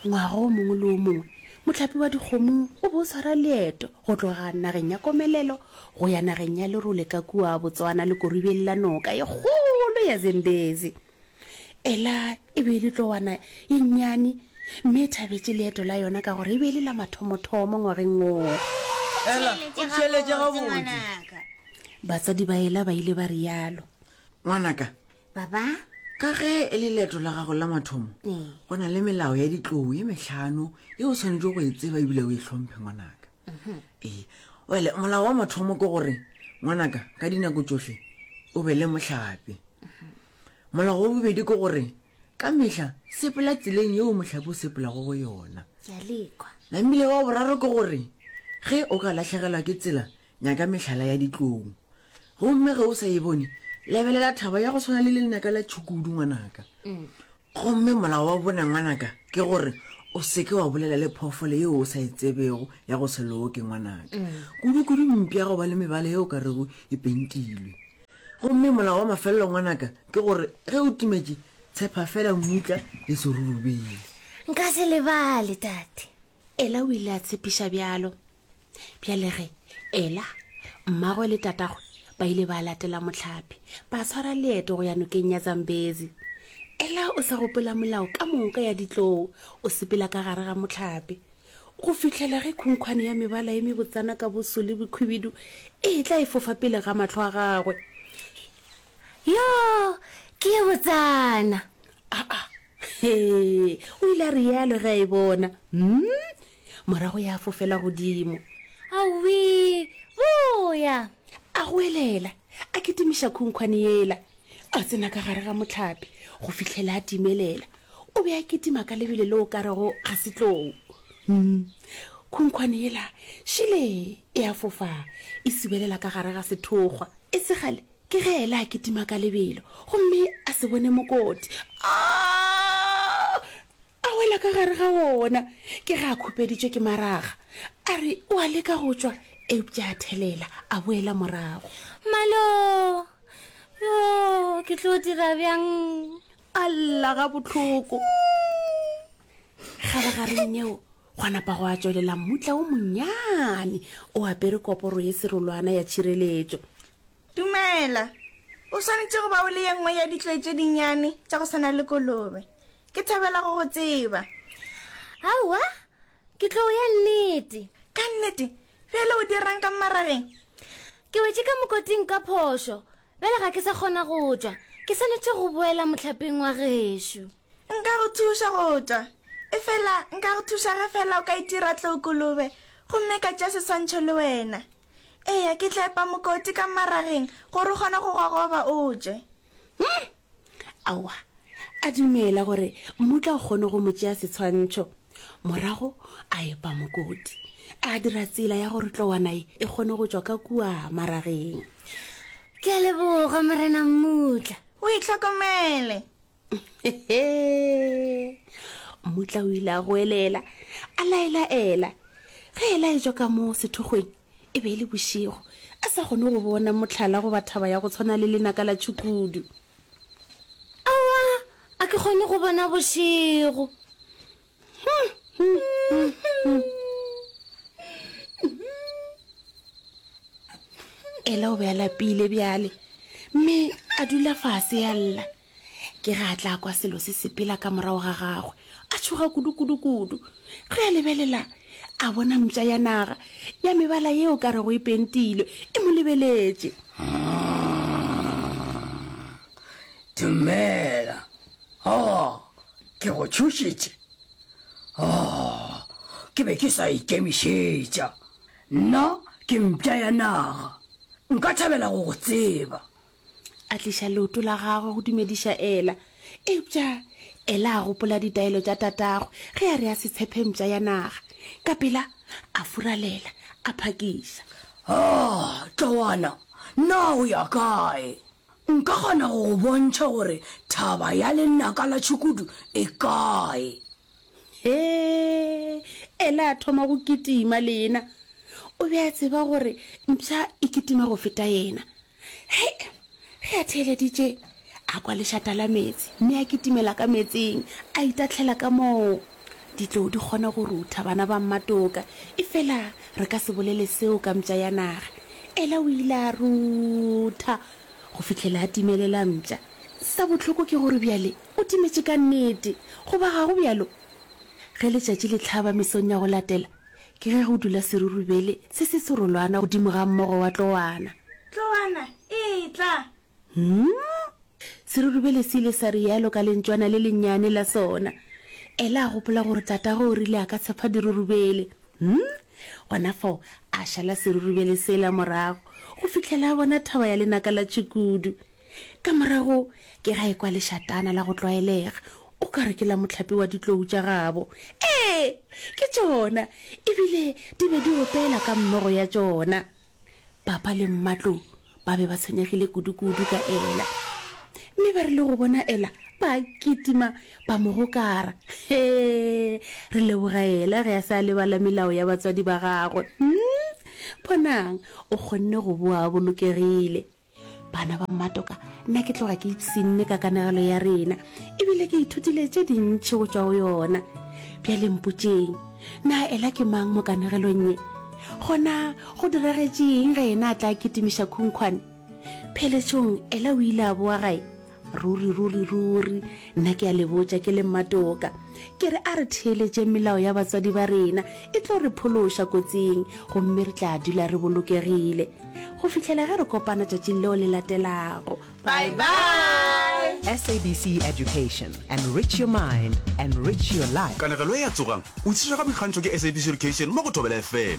Ngwaga o mongwe le o mongwe, mohlapi wa dikgomo o be o swara leeto go tloga nageng ya komelelo go ya nageng ya lerole ka kua Botswana lekoribeng la noka ye kgolo ya Zambezi. Ela e be e le tlowana ye nnyane mme e thabetše leeto la yona ka gore e be e le la mathomothomo ngwageng woo. Ela, o theeletše gabotse! Batswadi ba Ela ba ile ba realo. Ngwanaka, Baba? Ka ge e le leeto la gago la mathomo, go na le melao ya ditlou e metlhano e o tshwanetse go e tseba ebile o e tlhomphe ngwanaka. Ee, wele molao wa mathomo ke gore ngwanaka ka dinako tsohle o be le mohlape. Molao wa bobedi ke gore ka mehla sepela tseleng yeo mohlape o sepelago go yona. Ke a lekwa. Namile wa boraro ke gore ge o ka lahlegelwa ke tsela Nyaka mehlala ya ditlong. Gomme ge o sa e bone, lebelela thaba ya go tshwana le lenaka la tšhukudu, ngwanaka. Gomme molao wa bone, ngwanaka, ke gore o seke wa bolela le phoofolo yeo o sa e tsebego ya go se loke, ngwanaka. Kudukudu mpi ya go ba le mebala yeo ka rego e pentilwe. Gomme molao wa mafelelo, ngwanaka, ke gore ge o timetše, tshepa feela mmutla le serurubele. Nka se lebale, Tate. Ela o ile a tshepiša bjalo. Bjale ge Ela, mmagwe le tatagwe ba ile ba latela mohlapi, ba swara leeto go ya nokeng ya Zambezi. Ela o sa gopola molao ka moka ya ditlou, o sepela ka gare ga mohlapi. Go fihlela ge khunkhwane ya mebala e mebotsana ka boso le bokhwibidu e etla e fofa pele ga mahlo a gagwe. Yoo, ke ye botsana! Aa, Hee! o ile a realo ge a e bona. Umm! Morago ya fofela godimo. Awee! Boya! A goelela, a kitimiša khunkhwane yela. A tsena ka gare ga mohlape go fihlela a timelela. O be a kitima ka lebelo le o ka rego ga se tlou. Umm! Khunkhwane yela, šile e a fofa, e sibelela ka gare ga sethokgwa. E se kgale, Ke ge Ela a kitima ka lebelo gomme a se bone mokoti, a a wela ka gare ga wona. Ke ge a khupeditšwe ke maraga, a re o a leka go tšwa, eupša a thelela, a boela morago. Malo! Yo, ke tlo dira bjang? A lla gabohloko. Kgabagareng yeo, Gwa napa gwa tšwelela mmutla wo monnyane o apere koporo ye serolwana ya tšhireletšo. Dumela. O swanetše go ba o le ye nngwe ya ditloi tše dinnyane tša go swana le kolobe. Ke thabela go go tseba. Aowa, ke tlou ya nnete. Ka nnete? Bjale o dira'ng ka mmarageng? Ke wetše ka mokoting ka phošo. Bjale ga ke sa kgona go tšwa. Ke swanetše go boela mohlapeng wa gešo. Nka go thuša go tšwa. Efela nka go thuša ge feela o ka itira tlookolobe gomme ka tšea seswantšho le wena. Eya, ke tla epa mokoti ka mmarageng gore o kgone go gogoba o tšwe. Hum! Aowa, a dumela gore mmutla o kgone go mo tšea setshwantšho. Morago a epa mokoti, a dira tsela ya gore tlowana ye e kgone go tšwa ka kua mmarageng. Ke a leboga, Morena Mmutla. O itlhokomele. mmutla o ile a goelela a laelaela ge e laetšwa ka moo sethokgweng e be e le bošego a sa kgone go bona motlhala goba thaba ya go tshwana le lenaka la tšhukudu awa a ke kgone go bona bošego ela o be a lapile bjale mme a dula fase ya lla Ke ge a tla kwa selo se sepela ka morago ga gagwe, a tšhoga kudu-kudu-kudu. Ge a lebelela, a bona mpša ya naga ya mebala yeo ka rego e pentilwe e mo lebeletše. Dumela. Oh, ke go tšhošitše. Oh, ke be ke sa ikemišetša. Nna ke mpša ya naga. Nka thabela go go tseba. a tliša leoto la gagwe go dumediša ela eupša ela a gopola ditaelo tša tatagwe ge a re a se tshephe mpša ya naga ka pela a furalela a phakiša a tloana na o ya kae nka kgona go go bontšha gore thaba ya lenaka la tšhukudu e kae he ela a thoma go kitima le yena o be a tseba gore mpša e kitima go feta yena he ge a theeleditše a kwa lešata la meetse mme a kitimela ka meetseng a itatlhela ka moo ditlou di kgona go rutha bana ba mmatoka e fela re ka se bolele seo ka mpša ya naga ela o ile a rutha go fitlhela a timelela mpša sa bohloko ke gore bjale o timetše ka nnete goba ga go bjalo ge letšatši le tlhaba mesong ya go latela Ke ge go dula serurubele se se serolwana godimo ga mmogo wa tlowana. Tlowana, etla! Hum! Serurubele se ile sa rialo ka lentšwana le lennyane la sona. Ela a gopola gore tatago o rile a ka tshepa dirurubele. Hum! Gona fao, a šala serurubele sela morago, go fihlela a bona thaba ya lenaka la tšhukudu. Ka morago ke ga ekwa lešatana la go tlwaelega, o ka re ke la mohlapi wa ditlou tša gabo. Ee, ke tšona! E bile di be di opela ka mmogo ya tšona. Papa le mmatlou ba be ba tshwenyegile kudu-kudu ka Ela. Mme ba rile go bona Ela, ba kitima, ba mo gokara. He! Re leboga Ela ge a se a lebala melao ya batswadi ba gagwe. Hm? Bonang, o kgonne go boa a bolokegile. bana ba mmatoka nna ke tloga ke ipsinne ka kanegelo ya rena ebile ke ithutile tše dintšhi go tšwa go yona bjale mpotseng na ela ke mang mo kanegelong ye gona go diragetšeng ge ena a tla kitimiša khunkhwane pheletšong ela o ile a boa gae Ruri, ruri, ruri, nna ke a le botša ke le mmatoka. Ke re a re theeletšeng melao ya batswadi ba rena, e tlo re phološa kotsing, gomme re tla dula re bolokegile go fihlela ge re kopana tšatšing leo le latelago. Bye bye! SABC Education. Enrich your mind. Enrich your life. Kanegelo e a tsogang. O tšhitšwa ka boikgantšho ke SABC Education mo go Thobela FM.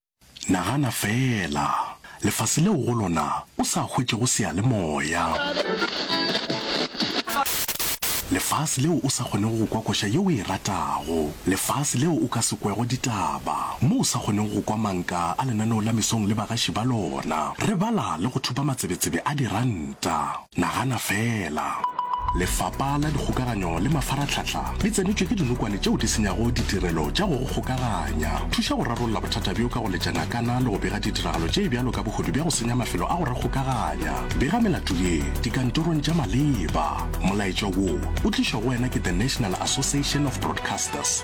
Nagana feela, lefase leo go lona o sa hwetšego seyalemoya. Lefase leo o sa kgonego go kwa koša ye o e ratago. Lefase leo o ka se kwego ditaba, mo o sa kgonego go kwa manka a lenaneo la mesong le bagaši ba lona. Re bala le go thupa matsebetsebe a diranta. Nagana feela! Lefapa la Dikgokaganyo le Mafaratlhatlha le tsenetšwe ke dinokwane tšeo di senyago ditirelo tša go go kgokaganya. Thuša go rarolla bothata bjo ka go letša ngakana le go bega ditiragalo tše bjalo ka bohodu bja go senya mafelo a go rakgokaganya. Bega melato ye dikantorong tša maleba. Molaetša wo o tlišwa go wena ke The National Association of Broadcasters.